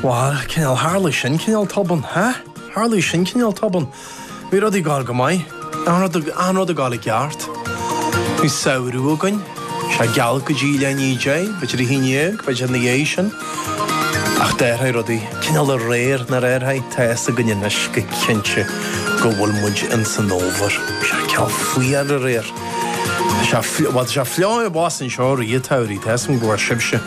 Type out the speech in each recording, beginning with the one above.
Bhal, cineál tharlaigh sin cineál tobann, hea? Tharlaigh sin cineál tobann. Bhí rudaí ag gáil go maith. Achan rud ag gáil i gceart. Bhí samhradh againn. Sea, geal go dtí leath i ndiaidh a deich, b'fhéidir a haon déag, b'fhéidir ina dhiaidh sin. Ach d'athraigh rudaí cineál aréir nár athraigh. Tá fhios againn anois go cinnte go bhfuil muid ins an Fhómhar. Sea, cineál fuar aréir. Sea, bhal, tá sé fliuch abhus anseo i rith an tsamhraidh, tá fhios agam go bhfuil sibhse.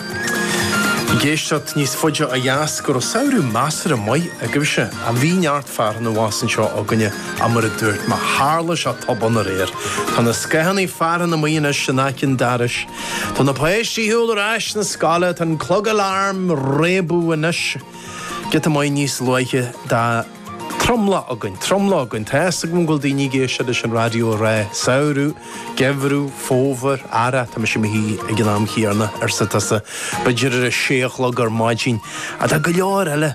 ag éisteacht níos faide ó dheas go raibh samhradh measartha maith agaibhse. Ach bhí neart fearthainne abhus anseo againne ach mar a dúirt mé tharla seo tobann aréir? Tá na scáthanna fearthainne amuigh anois in aice an dorais. Tá na páistí ag goil ar ais na scoile. Tá an clog aláraim ag réabadh anois giota maith níos luaithe do. Tromlach againn, tromlach againn. Tá fhios agam go bhfuil daoine ag éisteacht leis an raidió ag rá, Samhradh, Geimhreadh, Fómhar, Earrach, tá mise i mo shuí ag an am chéanna, arsa tusa, b'fhéidir ar a sé a chlog ar maidin. Ach do go leor eile,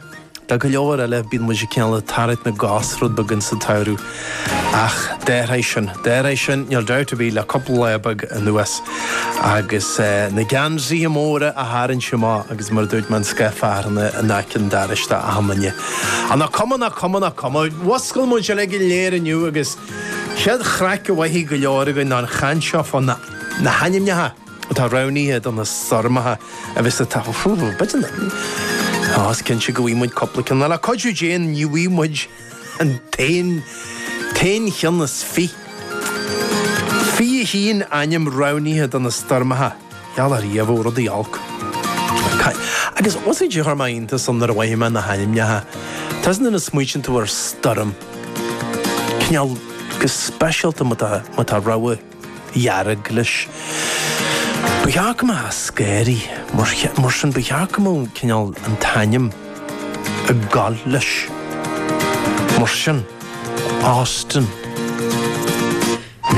do go leor eile, bíonn muid ag cineál tarraingt na gcos rud beagán sa tsamhradh. Ach d'athraigh sin. D'athraigh sin níl dabht ar bith le cúpla lá beag anuas. Agus na geansaithe móra a tharraingt amach agus mar a dúirt mé an scáth fearthainne in aice an dorais do achan duine. Á nach cuma, nach cuma, nach cuma. Mhuscail muid uilig go léir inniu agus is é an chéad chraic a mhothaigh go leor againn ná an chaint seo fá na hainmneacha atá roghnaithe do na stoirmeacha a bheas ag teacht. Ó, b'fhéidir, á is cinnte go bhfaighidh muid cúpla ceann. Le cuidiú Dé, ní bhfaighidh muid. an t-aon cheann is fiche Fiche a haon ainm roghnaithe do na stoirmeacha gheall ar dhíobh ó rudaí olc. Ca, agus usaid de chuir mé iontas ann nuair a mhothaigh mé na hainmneacha, tá fhios agat nuair a smaoitíonn tú ar stoirm, cineál go speisialta má tá, má tá rabhadh. dhearg leis. Ba cheart go mbeadh sé scary mar sin, ba cheart go mbeadh cineál an t-ainm ag goil leis mar sin, Austin.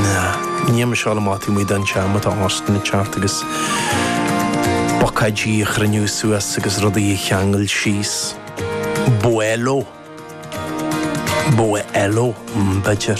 Nah, ní am seo a mothaíonn muid an seam atá Austin ag teacht agus bucáidí a chruinniú suas agus rudaí a cheangal síos. Buelo. Buelo, b'fhéidir.